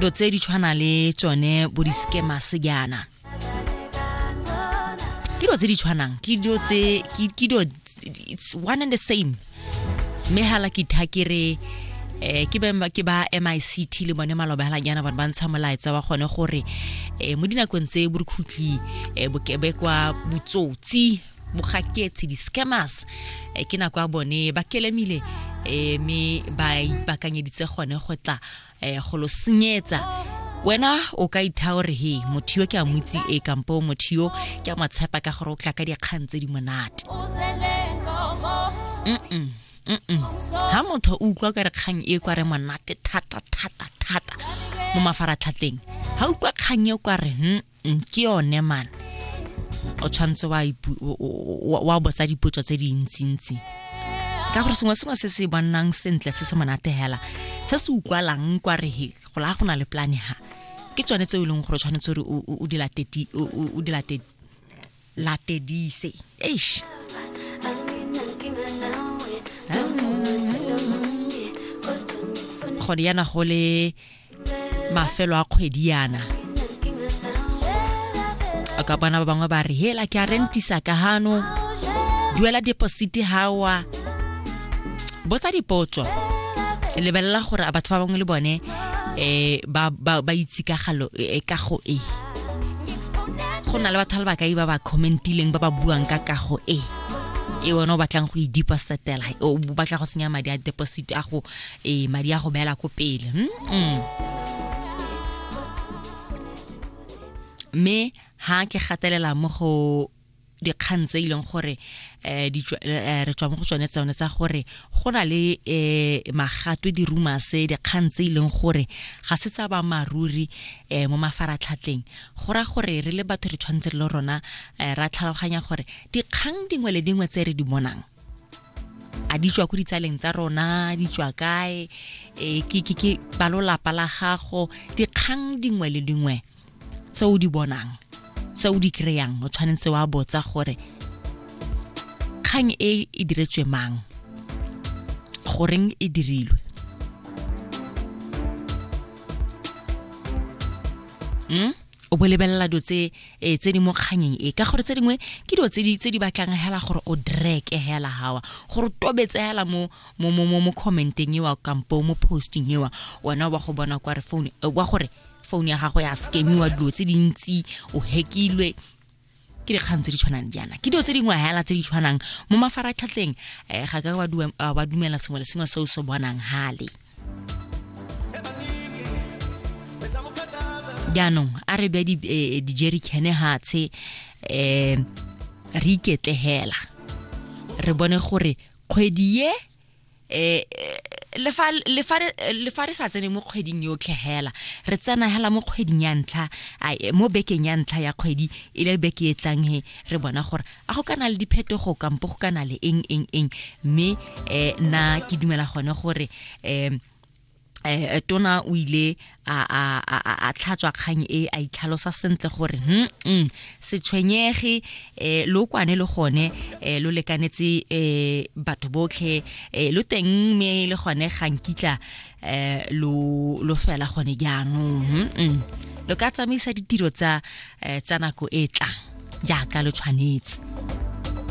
dilo tse di tshwana le tsone bo di-scammer sejana ke dilo tse di tshwanang ke dilo tse ke dilo it's one and the same mme hala ke tha ke re eh ke ba ke ba MICT le bone malobela jana ba ntsha molaetsa wa gone gore eh mo dinakong tse bo re khutli eh bokebekwa botsotsi mogaketsi di-scammers eh, ke nako ya bone ba kelemile eh, mme ba ipakanyeditse gone go tla eh, go lo senyetsa wena o ka itha gore he motho yo ke a motsi e kampo motho yo ke a motshepa ka gore o tla ka dikgang tse di monate ha motho o utlwa ka re kgang e kwa re monate thata thata thata mo mafaratlhatleng ha utlwa kgang e kwa re Mm, ke yone man o tshwanetse wa ipu- o- o- o- wa botsa dipotso tse dintsintsi ka gore sengwe sengwe se se bonang sentle se se monate hela se se utlwalang kwa re he go la go na le plane ha ke tsone tse e leng gore o tshwanetse gore o- o- o di late ti- o- o- o di late latedise eish gone yana go le mafelo a kgwedi yana a ka bona ba bangwe ba re hela ke a rentisa ka hano duela deposite hawa botsa dipotso lebelela gore a batho ba bangwe le bone um ba itse ka galo eh, ka go e go na le batho ba bakai ba ba commentileng ba ba buang ka kago e ke wena o batlang go e depositela o batla go senya madi a deposit a go e madi a go beela ko pele hmm? hmm. mme ha ke gatelela mo go dikgang tse e leng gore eh, eh, re tswa mo go tsone tsone tsa gore go na le eh, magatwe dirumase dikgang tse e leng gore ga se tsa ba maruri mo mafaratlhatleng go ra gore re le batho re tshwanetse re le rona ra tlhaloganya gore dikgang dingwe le dingwe tse re di bonang a di tswa ko ditsaleng tsa rona di tswa kae ke balolapa la gago dikgang dingwe le dingwe tse o di bonang tse o di kry-ang o tshwanetse wa botsa gore kgang e e diretswe mang goreng e dirilwe mm? o bo lebelela dilo tse eh, tse di mo kganyeng e ka gore tse dingwe ke dilo tse di batlang hela gore o dreke hela hawa gore o tobetse hela mo mo mo mo commenteng ewa kampo mo posting ewa wena wa go bona kwa re phone eh, wa gore phone ya gago ya scamiwa dilo tse dintsi o hekilwe ke dikgang tse di tshwanang jaana ke dilo tse dingwe hela tse di tshwanang mo mafaratlhatlheng um ga ka ba dumela sengwe le sengwe se o se bonang hale jaanong a re bya eh, dijericane hatshe um re iketlegela re bone gore kgwedi ye eh, eh le fa le fa le fa re sa tsene mo kgweding yotlhe hela re tsena hela mo kgweding ya ntlha eh, mo bekeng ya ntlha ya kgwedi e le beke e tlang he re bona gore a go kana le diphetogo kampo go kana le eng eng eng mme eh na ke dumela gone gore eh eh tona o ile a a a tlhatswa kgang e a itlhalosa sentle gore hm mm, se tshwenyege eh lo kwane le gone eh lo lekanetse eh batho botlhe eh lo teng me le gone ga nkitla eh lo lo fela gone jaanong hm, mm. lo ka tsamaisa ditiro tsa eh, tsa nako e tlang jaaka lo tshwanetse